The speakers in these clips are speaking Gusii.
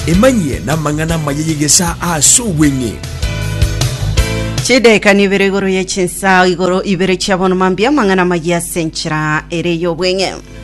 Emanyie namang'ana amaya y'egesaa aase obweng'e. Chidaeka nibere igoro ye chinsa igoro ibere chia bono mambia mang'ana magi ase enchera ere y'obweng'e.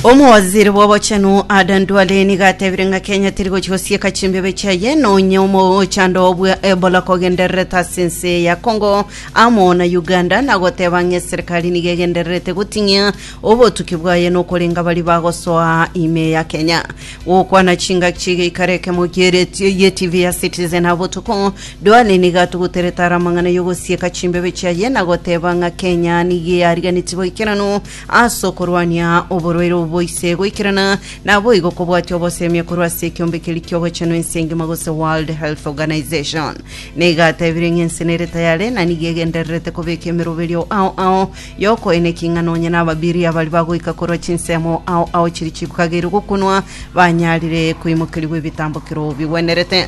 Omowaziri bw'obochenu Adan Duale niga atebire ng'a Kenya teri gochi gosieka chimbebe chiaye nonye omochando obwe Ebola kogendererete ase ense ya Congo amo na Uganda na goteba ng'a eserikari niga egendererete goting'ia Obotuki bwaye nokorenga baria bagosoa ime ya Kenya. Gokwana chingaki chigeikara ekemo kieretio ye TV ya Citizen ha botuko. Duale nigo atuguterete are amang'ana y'ogosieka chimbebe chiaye na goteba ng'a Kenya nigo yariganeti boikeranu ase okorwania oborwaire obo boise goikerana naboigo kobwatia obosemia korwa ase ekiombe keria ki'ogochenwa ense engima gose World Health Organization. Nigo atebire ng'a ense nere tayare na nigo egendererete kobeka emeroberio ao ao y'okoeneka ing'ana onye nababiria baria bagoika korwa chinsemo ao ao chiria chikageirio gokunwa, banyarire koimokerigwa ebitambokero bigwenerete.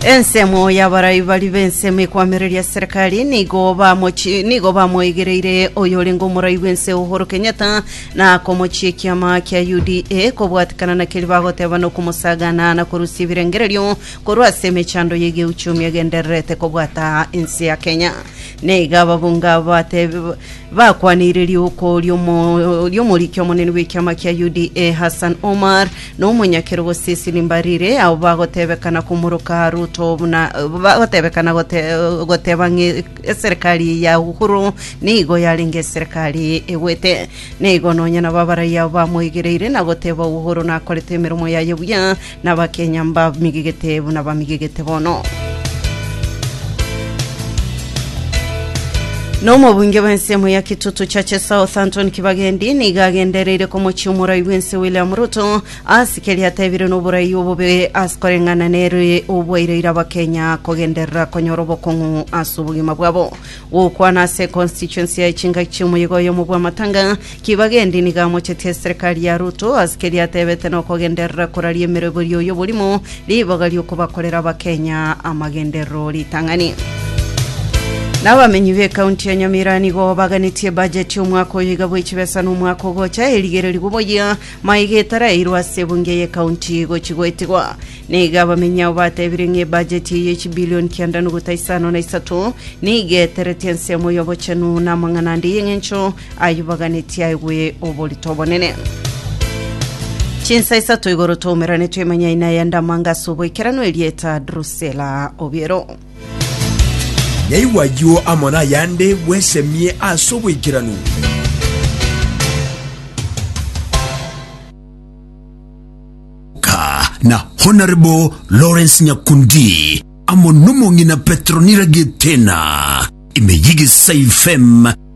Ensemo y'abarai baria b'ensemo ekwamereria serikali nigo bamochi- nigo bamoigereire oyorenge omorai bw'ense Uhuru Kenyatta na komochia ekiama kia UDA kobwatikana na keria bagoteba na okomosagana na korusia ebirengererio korwa ase emechando y'egeuchumi egendererete kobwata ense ya Kenya. Na iga ababunge abo batebe, bakwanire riuko ri'omo- ri'omoriki omonene bw'ekiama kia UDA, Hassan Omar, na omonyakerogo Cecily Mbarire, abo bagotebekana komoroka Ruto buna bagotebekana gote- goteba ng'a eserekari ya Uhuru nigo yarenge eserekari egwete. Na igo nonya nabo abaraiyo abo bamoigereire na goteba Uhuru nakorete emeromo yaye buya, Nabakenya mbamigigete buna bamigigete bono. Nomobunge bw'ensemo ya Kitutu Church South Anton Kibagendi nigo agendereire komochia omorai bw'ense William Ruto ase keria atebire noborai obobe ase koreng'ana nere obwaireire abakenya kogenderera konyora obokong'u ase obogima bwabo. Gokwana ase constituency ya Echingaki chiomoyega oyomo bwa Matanga Kibagendi nigo amochetie eserekari ya Ruto ase keria atebete na okogenderera koraria emeroberio y'oborimo, ribaga ri'okobakorera Abakenya amagenderero ritang'ani. Na abamenyi b'ekaunti ya Nyamira nigo baganetie bajeti y'omwaka oyo iga bwe chibesa na omwaka ogocha erigererigwe boyia maiga etaraeirwe ase ebunge y'ekaunti gochi goetigwa. Nigo abamenyi abo batebire ng'a ebajeti eye ye chibilioni kianda nogota isano na isato nigo eteretie ensemo y'obochenu na amang'ana ande y'eng'encho Ayubu aganeti aigwe oborito obonene. Chinsa isato igoro twaumerane twemanya ina ya ndamanga ase oboikeranu erieta Drusela Obiero. Yaigwa ayio amo nayande bwesemie ase oboikeranu. Ka na Honourable Lawrence Nyakundi amo nomong'ina Petronira Getena ime y'Egesai FM